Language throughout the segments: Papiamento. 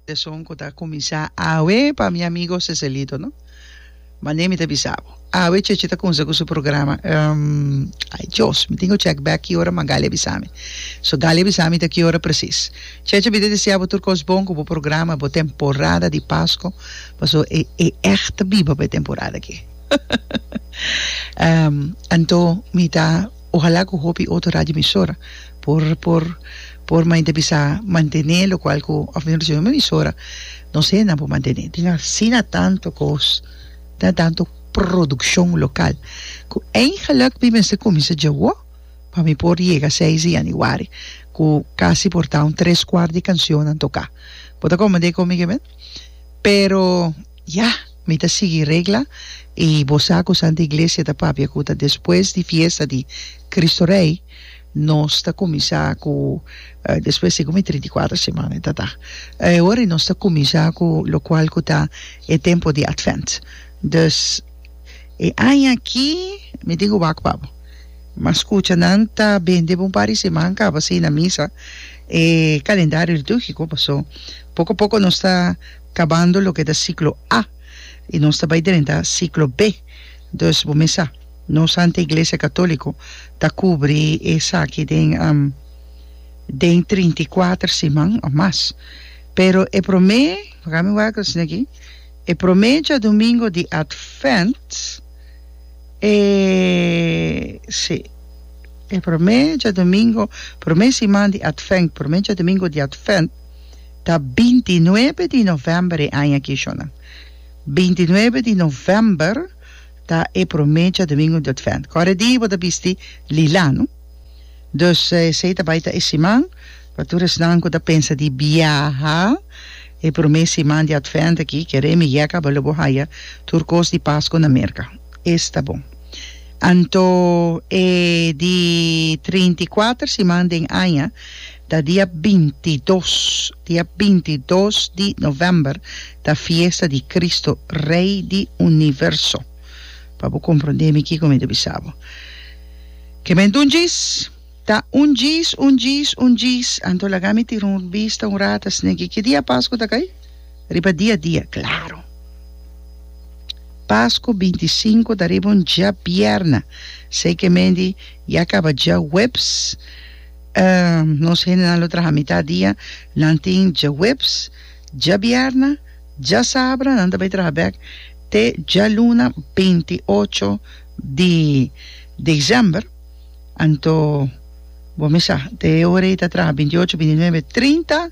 E son cu ta cuminsa awe pa mi amigo Cecelito, no? Mane mi ta bisa bo. Awe Cheche ta cunsa cu su programa. Um, ay Dios, mi tin cu check back ki ora, ma Galia bisa mi. So Galia bisa mi ta ki ora precies. Cheche mi ta desea bo tur cos bon cu bo programa, bo temporada di Pasco, paso e e echt biba pa e temporada aki. Um, anto mi ta. Ojalá cu hopi otro radioemisora por por por mainta bisa mantene locual cu of nos recibi un emisora nos hendenan por mantene tin asina tanto cos tin tanto produccion local cu eigenlijk mi mester cuminsa dje awo pa mi por yega seis di januari cu casi por ta un tres cuart di cancionnan toca bo ta comprende cu mi ke men pero Ya, mi ta sigui regla i bo sa ku Santa Iglesia ta papia ku ta despues di fiesta di Kristu Rei nos ta kuminsá ku despues di mi trinta i kuater semana ta ta e ora i nos ta kuminsá ku lokual ku ta e tempu di Advent. Dus e aña aki mi tin ku wak pa bo mas kucha nan ta bende bo un par di seman kaba si na misa e kalendario litúrgiko paso poko poko nos ta Kabando loke ta siklo A i nos ta bai drenta siklo B. Dus bo mesa, nos Santa Iglesia Katóliko ta kubri esaki den den trinta i kuater siman òf mas. Pero e promé, paga mi wak asina aki, e promé djadumingo di Advènt, e si, e promé djadumingo, promé siman di Advènt, promé djadumingo di Advènt, Ta binti nuebe di novèmber e aña aki, shona. Binti nuebe di novèmber ta e promé djadumingu di Advènt. Kòrda e di bo ta bisti lila, no? Dus esei ta bai ta e siman pa tur esnan ku ta pensa di biaha. E promé siman di Advènt aki kere mi yèk a balo bo haya tur kos di Paskua na Merka. Esta bon. Anto e di trinta i kuater siman den aña. Ta dia binti dos, dia binti dos di novèmber ta fiesta di Kristu, Rei di Universo. Pa bo komprondé mi kiko mi ta bisa bo. Ke men ta un djis? Ta un djis, un djis, un djis. Anto laga mi tira un bista un rat asina ke ki dia Pasku ta kai? Riba dia dia, klaro. Pasku binti sinku ta riba un djabièrna. Sei ke men di ya kaba djahuebs. Nos hendenan lo traha mitá dia, nan tin djahuebs, djabierna, djasabra, nan ta bai traha bèk te djaluna beinti ocho di desèmber. Anto bo mi sa, te e ora ei ta traha beinti ocho, beinti nuebe, trinta,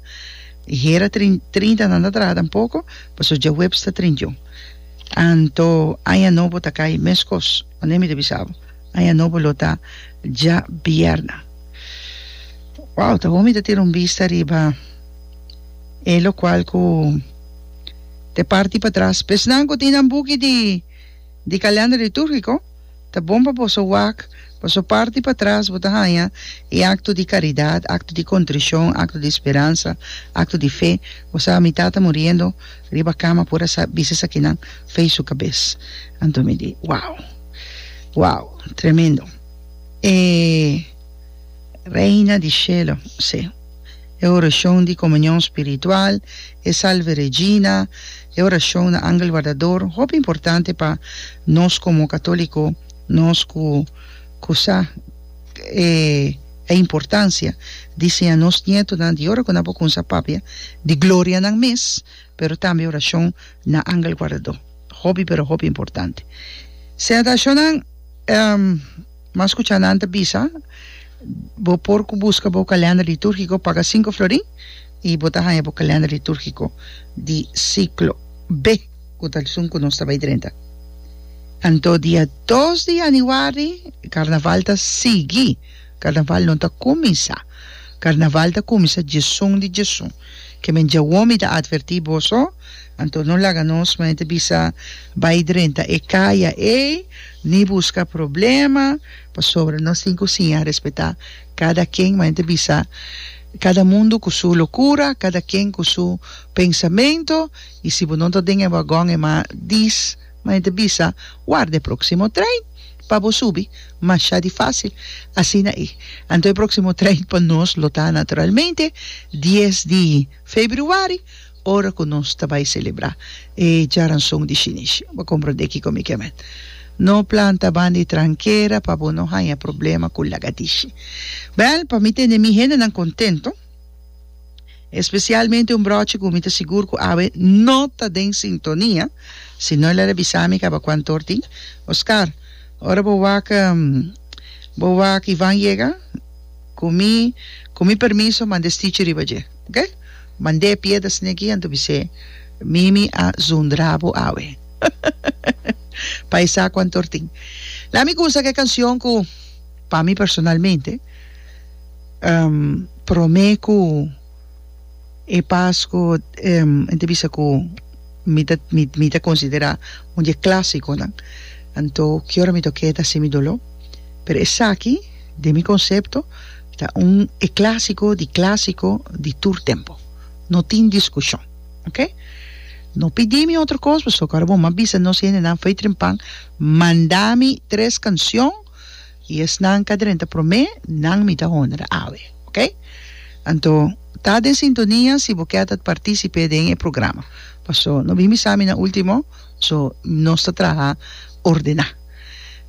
i hera trin trinta nan ta traha tampoko, pasobra djahuebs ta trinta i un. Anto aña nobo ta kai meskos. Mane mi ta bisa bo? Aña nobo lo ta dja bierna. Wou, ta bon mi ta tira un bista riba e lokual ku ta e parti patras. Esnan ku tin nan buki di kalènder litúrgiko, ta bon pa boso wak, boso parti patras bo ta haña e akto di karidat, akto di kontrishon, akto di speransa, akto di fe, bo sa mi tata muriendo, Riba cama por a sa bisti esakinan fey su cabes. Anto mi di wow wow tremendo e Reina di shelo si e oracion di comunion spiritual e Salve Regina e oracion na Angel Guardador hopi importante pa nos como catolico nos cu cu sa e importancia di siña nos nietonan di ora cu nan por cunsa papia di gloria nan mes pero tambe oracion na angel guardador hopi pero hopi importante sea ta asho nan mas cu ca nan ta bisa bo por cu busca bo calendar liturgico paga sinku florin y bo ta haya bo calendar liturgico di ciclo B. ku ta sun ku nos ta bai drenta. Anto dia dos di yanüari karnaval ta sigui, karnaval no ta kuminsá. Karnaval ta kuminsá djesun di djesun. Ke men djawo mi ta atvertí boso, anto no laga nos men ta bisa bai drenta e kaya ei ni buska problema, pasobra nos tin ku siña respetá kada ken, men ta bisa kada mundu ku su lokura, kada ken ku su pensamentu. I si bo no ta den e wagon e ma dis ma e ta bisa, warda e próksimo trein pa bo subi, mashá di fásil asina i. Anto e próksimo trein pa nos lo ta naturalmente dies di februari ora ku nos ta bai selebrá e djaranson di Shinish. Bo komprondé kiko mi ke mend? No planta ban di trankera pa bo no haña problema ku lagadishi. Bèl, pa mi tende mi hendenan kontento. Especialmente un brochi cu mi ta sigur cu awe no ta den sintonia, si no el a revisa mi caba cu antor tin. Oscar, ora bo wak, bo wak y Van yega, cu mi, cu mi permiso mande stichi riba dje, ok? Mande pie ta sne aki anto bis'é, Mimi a zundra bo awe. pa e sa cu antor tin. Lami cuminsa cu e cancion cu, pa mi personalmente, Prome ku e pas ku mi ta bisa ku mi ta mi ta konsiderá un di e klásikonan anto ki ora mi ta oke ta hasi mi doló pero esaki den mi konsepto ta un e klásiko di klásiko di tur tempu no tin diskushon oke no pidi mi otro kos pasobra bo mi a bisa nos hendenan fei trempan manda mi tres kanshon Y esnan ca drenta prome, nan mi ta honra awe. Ok? Anto, ta den sintonia si bo ket at participe den e programa. Paso, no bin bisa mi na ultimo, so nos ta traha ordena.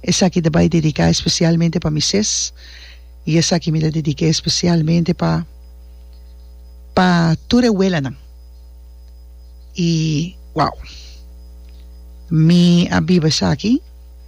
Esaki ta bai dedica especialmente pa mises, y esaki mi ta dedica especialmente pa pa tur e welanan. Y, wow! Mi a biba esaki.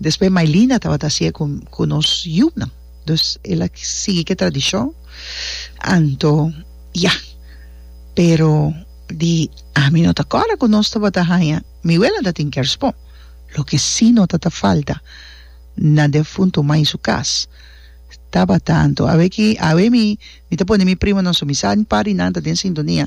Despues Mailina tabata haci'e cu cu nos yunan. Dus ela sigui ke tradicion anto ya. Pero di ami no ta corda cu nos tabata haya mi wela ta tin kerspon. Loke si no ta ta falta na defunto mai su cas tabata anto awe ki awe mi mi ta pone mi primonan su mi sa par di nan ta den sintonia.